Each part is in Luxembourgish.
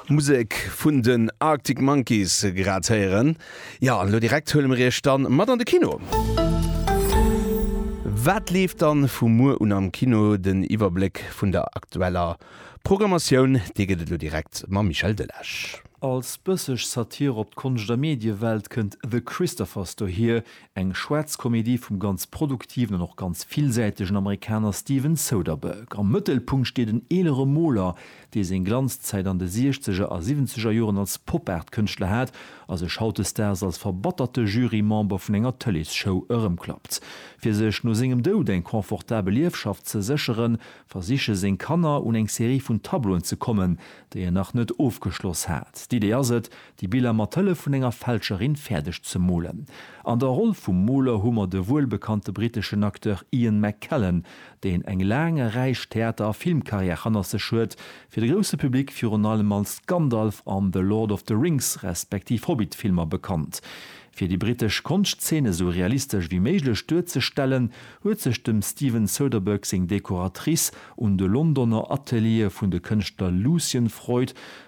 Musek vun den Arctic Monkeys grad héieren. Ja an lo direkt huele mir iech dann mat an de Kino. Wat leeft dann vu muer un am Kino? Den Iwwerbléck vun der aktueller Programmatioun, dee gëtt et lo direkt mam Michel Delage. Als bësseg Satire op d'Konscht a Mediewelt kënnt The Christophers dohier, Eng schwaarz Komedie vum ganz produktiven an och ganz villsäitegen Amerikaner Steven Soderbergh. Am Mëttelpunkt steet en eelere Moler, dee seng Glanzzäit an de Siechzeger a Siwwenzeger Joren als Pop-Art-Kënschtler hat a sech hautdesdaags als verbatterte Jury-Member vun enger Tëleesshow erëmklappt. Fir sech no sengem Doud eng confortabel Liefschaft ze sécheren, versiche seng Kanner, un eng Serie vun Tableauen ze kommen, déi en nach net ofgeschloss hat. D'Idee ass et, Déi Biller mat Hëllef vun enger Fälscherin fäerdeg ze molen. An der Roll vum Moler hu mer de wuelbekannte britteschen Acteur Ian McKellen, deen eng laang a räich Theater a Filmkarriär hannert sech huet, fir de grousse Public virun allem als Gandalf an The Lord of the Rings respektiv Hobbit Filmer bekannt. Fir déi brittesch Konschtzeen esou realistesch wéi méiglech duerzestellen, huet sech dem Steven Soderbergh seng Dekoratrice un de Londoner Ateliere vun de Kënschtler Lucian Freud,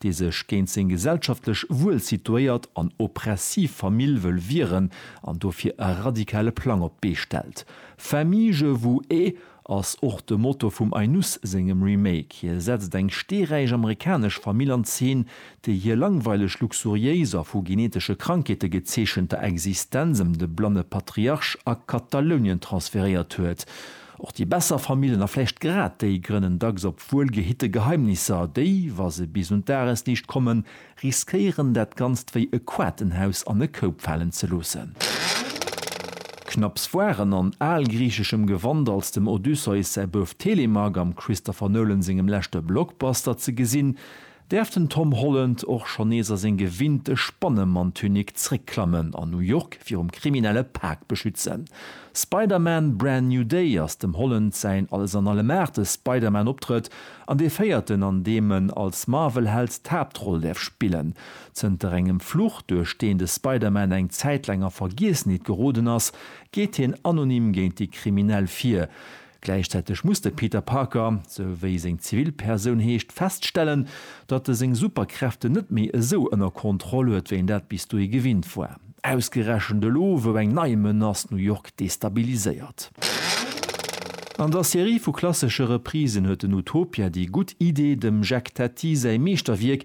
dee sech géint seng gesellschaftlech wuel situéiert an oppressiv Famill wëll wieren an dofir e radikale Plang op d'Bee stellt. Famille je vous ai ass och de Motto vum Ainus sengem Remake. Hie setzt eng steeräich amerikanesch Famill an Zeen, déi hir langweileg luxuriéis a vu genetesche Krankheete gezeechenter Existenz ëm de blanne Patriarch a Katalounien transferéiert huet. Och déi besser Famillen, a vläicht grad déi, grënnen dacks op wuelgehitte Geheimnisser. Déi, wa se bis un d'Dagesliicht kommen, riskéieren dat Ganzt wéi e Quatenhaus an e Koup falen ze loossen. Knapps waren an algriicheschem Gewand als dem Odysseus säi Bouf Telemach am Christopher Nolan sengem leschte Blockbuster ze gesinn, Däerf den Tom Holland och schonn nees a seng gewinnte Spannemanntunik zréckklammen an New York virum kriminelle Pak beschützen? Spider-Man, Brand New Day ass dem Holland säin Alles-an-Allem-Aarte Spider-Man-Optrëtt an dee véierten, an deem en als Marvel-Held d'Haaptroll däerf spillen. Zënter engem Fluch, duerch deen de Spider-Man eng Zäit laang a Vergiessenheet geroden ass, geet hien anonym géint déi Kriminell vir. Gläichzäiteg muss de Peter Parker, sou wéi seng Zivilpersoun heescht, feststellen, datt e seng Superkräften net méi esou ënner Kontroll huet, wéi en dat bis dohi gewinnt war. Ausgerechent elo, wou eng nei Menace New York destabiliséiert. An der Serie vu klassesche Reprisen huet den Utopia déi gutt Idee, dem Jacques Tati säi Meeschterwierk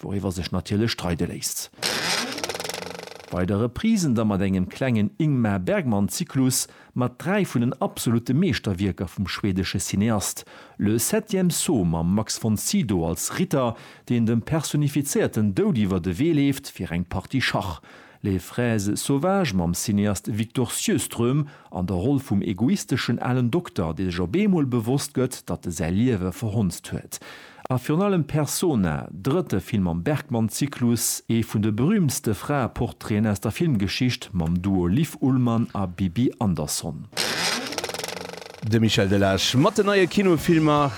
Wouriwwer sech natierlech streide léisst. Bei der Reprise da mat engem klengen Ingmar Bergman-Zyklus mat dräi vun den absolute Meeschterwierker vum schwedesche Cineast, Le septième saut mam Max von Sydow als Ritter, deen dem personifizéierten Doud iwwer de Wee leeft fir eng Partie Schach. Les fraises sauvages mam Cineast Victor Sjöström an der Roll vum egoisteschen alen Dokter, dee sech op eemol bewosst gëtt, datt e säi Liewe verhonzt huet. A virun allem Persona, drëtte Film am Bergman-Zyklus, ee vun de berüümtste Fraeportraiten aus der Filmgeschicht, mam Duo Liv Ullmann a Bibi Andersson. De Michel Delage mat den neie Kinofilmer.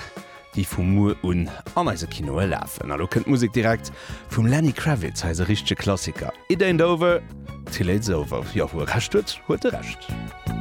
déi vu muer un an eise Kinoe lafen. A lo kënnt d'Musek direkt vum Lenny Kravitz, hei ass e richtege Klassiker, It ain't over till it's over. Jo, wou e Recht huet, huet e Recht.